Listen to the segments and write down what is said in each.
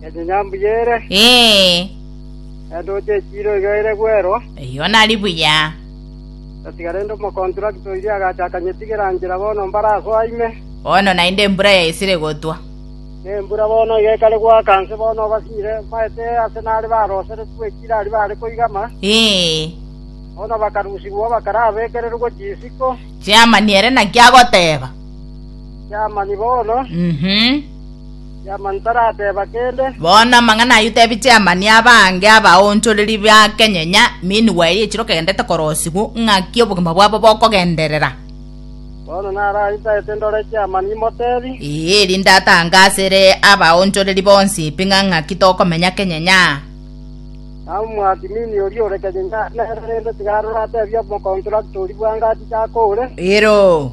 Ende nyambuya ere, Ee, ende oche echiiro iga ere bwerwa. eyio nari buya. Gatiga rende omokontrakta oiria agacha akanyetigera nchera bono mbare asoa ime. Bono naende embura yaisire gotwa. Na embura bono iga ekare goaka nse bono obasinyire, maete ase nare baroseretwe ekiira aria baare koigama, Ee, bono bakarusigwa bakarabekererwe gochia isiko. chiamani ere naki agoteeba. Chiamani bono, Mhm. Tiamani tarateba kende. Bono amang'ana ayio tebi Tiamani abange abaonchoreri bake nyenya meanwhile echiro kegendete korosigwa ng'aki obogima bwabo bokogenderera. Bono naraisaete ndore Tiamani imotebi. Ee, erinde atange asere abaonchoreri bonsi pi ng'a ng'aki tokomenya kenyenya. Namobwati mini oria ore kenyenya nere rende tiga arore atebi omokontrakta oria bwango achiche ake ore. Ero.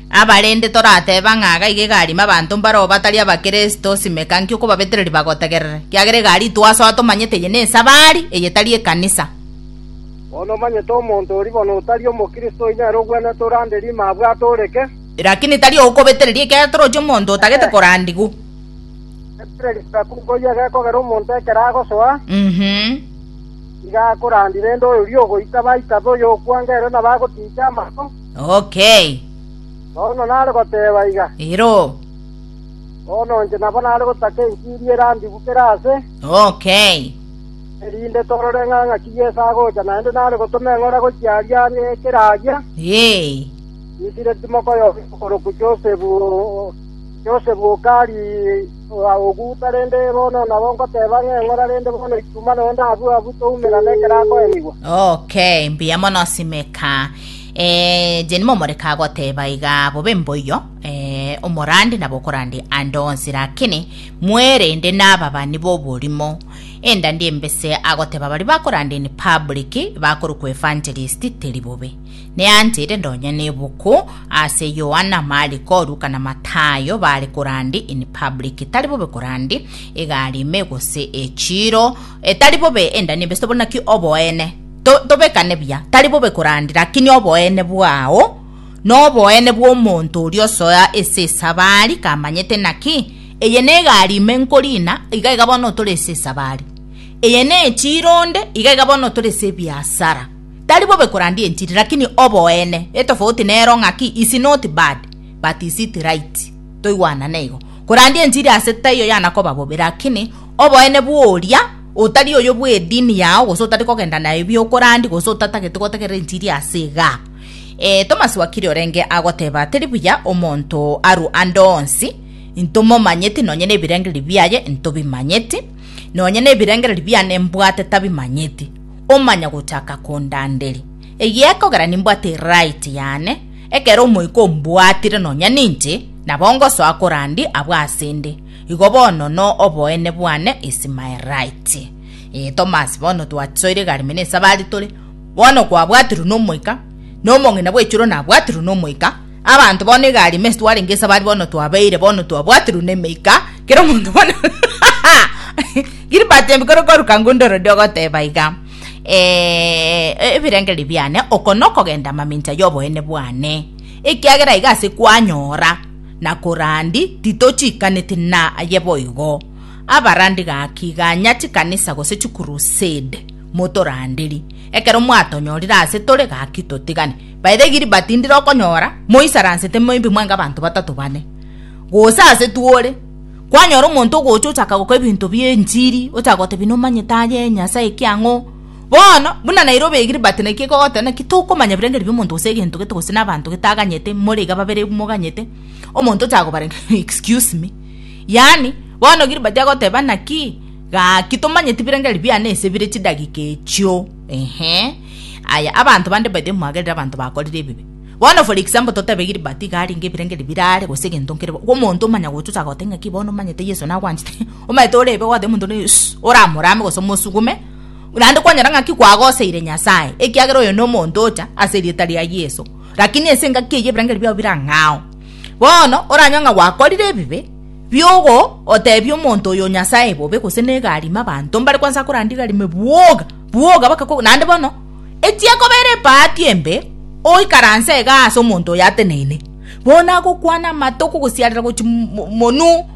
Abarende torateba ng'a gaiga egarima abanto mbareo batari Abakristo, simeka nki okobabetereria bagotegerere, kiagera egari itwasoa tomanyete eye nesabari, eye tari ekanisa. Bono omanyete omonto oria bono otari Omokristo onye nere ogwenerete orande rima abwate oreke. Lakini tari ogokobetereria ekiagera toroche omonto otagete korandigwa. Betereria bweka nkoyia egekogera omonto ekero agosoa, nigo akorandire ende oyoria ogoita baitabe oyokwangerire na bagotiicha amato. Okay. Paulo nare goteeba iga. Iroo. Bono inche nabo nare gotaka enchiri erandigwe kera aase. Okay. Erinde torore ng'a ng'aki Yeso agocha, naende nare gotoma eng'ora gochia aria are kera aria. Ee. Misiri timoko yoka okorokwa Josefu, o- Josefu okari o- oguta, rende bono nabo ngoteeba ng'a eng'ora rende bono ichuma noyo ndabue abwo toumera nekero akoenigwa. Okay, mbuya mono simeka. Eh, Jane momoreka agoteba iga bobe mboiyo, eh, omorande nabo okorande ande onsi, lakini mwerende n'ababani b'oborimo. Endandi embese agoteba bari bakorande in public bakorokwa evangelist teri bobe. Neanchire ndonye nebuku ase Yohana, Mariko, Luka na Matayo bare korande in public tari bobe korande egari ime gose echiro etari bobe endandi embese tobona ki oboene To, tobekane buya, tari bobe korandi, lakini oboene bwao noboene bw'omonto oria osoa ase esabari kamanyete naki eye negari ime nkorina iga iga bono otore ase esabari eye nechiri onde iga iga bono otore ase ebiasara tari bobe korandi enchiri lakini oboene etofauti nero ng'aki is not bad but is it right toigwanane igo korandi enchiri ase taiyo yanakoba bobe lakini oboene bworia Otari oyo bw'edini yao, gose otari kogenda naye biokorandi, gose otatagete gotegerera enchiri ase iga. Ee, Tomasi wakiri orenge agoteba, Teri buya omonto arue ande onsi, intomomanyeti, nonye nebirengererio biaye intobimanyeti, nonye nebirengererio biane mbwate tabimanyeti, omanya gochaka kondanderia. Egiekogera nimbwate eriraiti yane, ekero Omoika ombwatire nonya ninche, nabo ngosoa korandi abwo ase 'nde. Igo bono no oboene bwane Ismaelite. Ee, Tomasi, bono twasoire egari mene esabari tore, bono kwabwatirwe n'Omoika, na omong'ina bw'echuro nabwatirwe n'Omoika, abanto bono egari ime twarenge esabari bono twabeire, bono twabwatirwe n'Emeika, kera omonto bono Gilbert Mbikoro koruka ngunda ororiri ogoteba iga, ee, ebirengererio biane, oko nokogenda amamincha y'oboene bwane, ekiagera iga ase kwanyora na korandi titochiikaneti na aye boigo. Abarandi gaki ganya chikanisa gose chikurusade motoranderi. Ekero mwatonyorire ase tore gaki totigane. By the Gilbert ndire okonyora moisaransete maybe mwange abanto batato bane. Gose ase twore kwanyora omonto ogocha ochaka goka ebinto bie enchiri ochaka gotebia nomanyete aye Nyasaye kiang'o. Bono, buna naire obegire, but naki ekogoteba naki tokomanya ebirengerio biomonto gose egento gete gose nabanto gete aganyete more iga babere moganyete omonto ocha kobarenga excuse me yaani bono Gilbert agoteba naki gaki tomanyeti birengerio biane ase bire chidagika echio ehe aya abanto bande by the way mwagerire abanto bakorire ebibe bono for example totebe Gilbert iga arenge ebirengerio bire are gose egento nkere bobe omonto omanya gocha ocha goteba ng'aki bono omanyete Yeso nagwanchete omanyete orebe goteba omonto one suuh oramorame gose omosugume. naende kwanyora ng'aki kwagoseire Nyasae, ekiagera oyo nomonto ocha ase erieta ria Yeso. Lakini ense engaki eye ebirangeri biao birang'ao. Bono oranywa ng'a gwakorire ebibe biogo otebia omonto oyo Nyasae bobe gose negarima abanto mbare kwansa korandigarime bwoga bwoga bakakogo naende bono etie kobera ebahati embe oikaranse ega ase omonto oyo ateneine bono agokwana amato okogosiarera gochi monu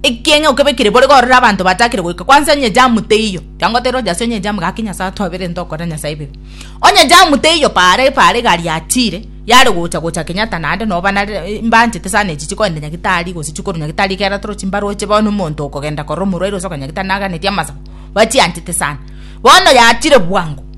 Ekiagera okebekire bore korora abanto batakire goika kwansa onye jamu teiyo kiango tera oja ase onye jamu gaki nyasae atwabere nto okore nyasae ebibe onye jamu teiyo paara epaara egari yachire yare gocha gocha kenyatta naende noba nare mbanchete sana echi chikoenda nyagitari gose chikorwa nyagitari ekero toro chimbaroche bono omonto okogenda korora omorwaire gose okogenda nyagitari naganeti amasago bachianchete sana bono yachire bwango.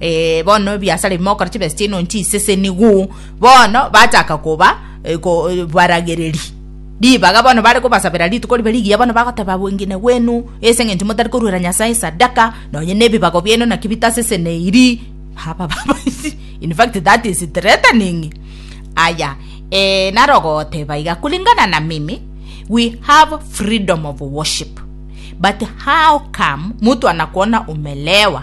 Eh, bono ebiasara bimokora chibesa chiaino nchiseseniguu bono bachaka koba eh, ko, eh, baragereri ribaga bono bare kobasabera rituko ribe rigiya bono bagoteba bwengine gwenu ase eng'encho motari koruera nyasae sadaka nonye na ebibago biaino naki bitaseseneiri haba baba in fact that is threatening aya eh, naro goteba iga kulingana na mimi we have freedom of worship but how come mtu anakuona umelewa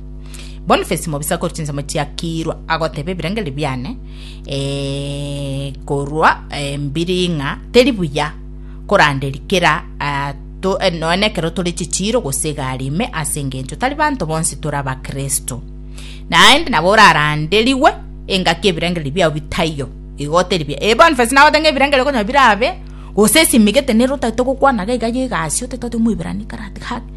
Boniface mobisa korwa chinsemo chia Kiirwa agoteba ebirengererio biane eh, korwa eh, mbiri ng'a teri buya koranderi kera ah, to, eh, noe nekero tore chichiiro gose egari ime ase engencho tari banto bonsi tore abakristo naende nabo oraranderigwe engaki ebirengererio biao bitaiyo igo teri buya eh, Boniface nagote ng'a ebirengererio konya birabe gose esimigete nere otagete gokwana gaiga ya egasi otete ote omoiberani karati gaki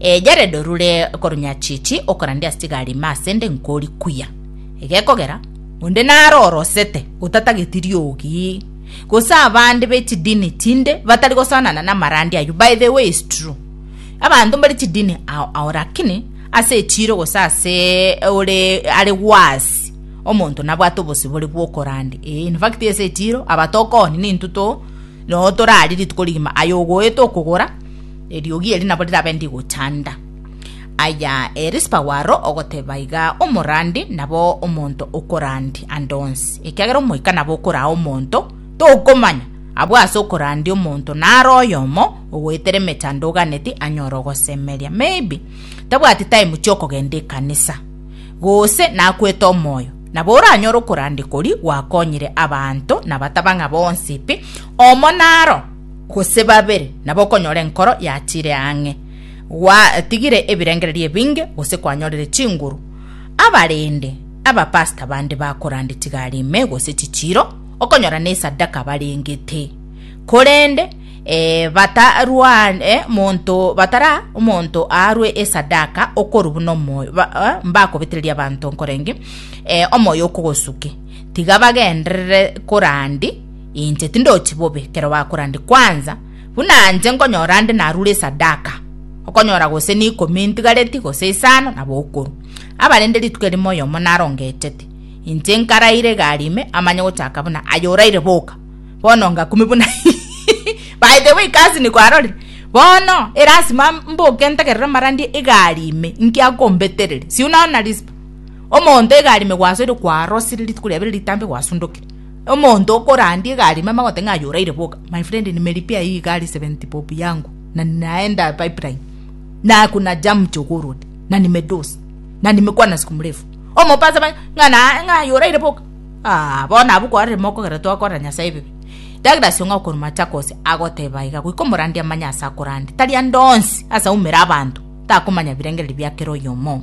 E Yaredi orure korunyachichi okorande ase chigari ime ase 'nde nkori kuya. Egekogera onde naro orosete otatageti riogi, gose abande be chidini chinde batari gosoanana namarandi ayio, by the way is true abanto mbare chidini ao ao lakini ase echiro gose ase ore are worse omonto nabwate obosibore bwokorande ee in fact ase echiro aba tokoni nintwe to noo torari rituko rigima aye ogoeta okogora Eriogi eri nabo rirabe ndigochanda. Aya Erispa waro ogoteba iga omorandi nabo omonto okorandi ande onsi, ekiagera omoika nabo okoraa omonto, tokomanya abwo ase okorandia omonto naro oyomo ogoetera emechando oganeti anyore ogosemeria maybe tabwati time chiokogenda ekanisa gose nakwete omoyo nabo oranyore okorandi kori gwakonyire abanto nabataba ng'a bonsi pi omo naro gose babere, nabo okonyora enkoro yatiire ang'e, gwatigire ebirengererio ebinge, gose kwanyorire chinguru. Abarende, abapastor bande bakorande tigari ime gose chichiiro, okonyora nesadaka barengete. Korende e, batarwane monto, batara omonto aarwe esadaka okoru buna omoyo, ba, eh, mbakobetereria abanto nkorenge e, omoyo okogosuke. Tiga bagenderere korandi Inche tindochi bobe ekero bakora ndi kwanza, buna inche nkonyora ande narure esadaka, okonyora gose n'ikomi intigareti gose isano nabo okorwa. Abarende rituko erimo oyomo narongechete, inche nkaraire egari ime amanye gochaka buna aye oraire boka. Bono ngakumi buna By the way cousin kwarorire bono erasima mboke ntegerere mara ndie egari ime inki akombetereri si unaona rispa omonto egari ime gwasoire kwarosire rituko riabere ritambe gwasundokire Omonto okorandia egari mama agote ng'a aye oraire boka. My friend nimeripia eye egari 70 bob yangu na naenda pipeline na kuna jam jogoo road na nimedosi na nimekwana siku mrefu omopasa ba ng'a na ng'a aye oraire boka ah bono abwo kwarire mokogera twakora nyasaye bibe Douglas ong'ao korwa Machakos agoteba iga goika omorandia amanye ase akorandia tari ande onsi ase aumera abanto takomanya birengererio bia kera oyomo.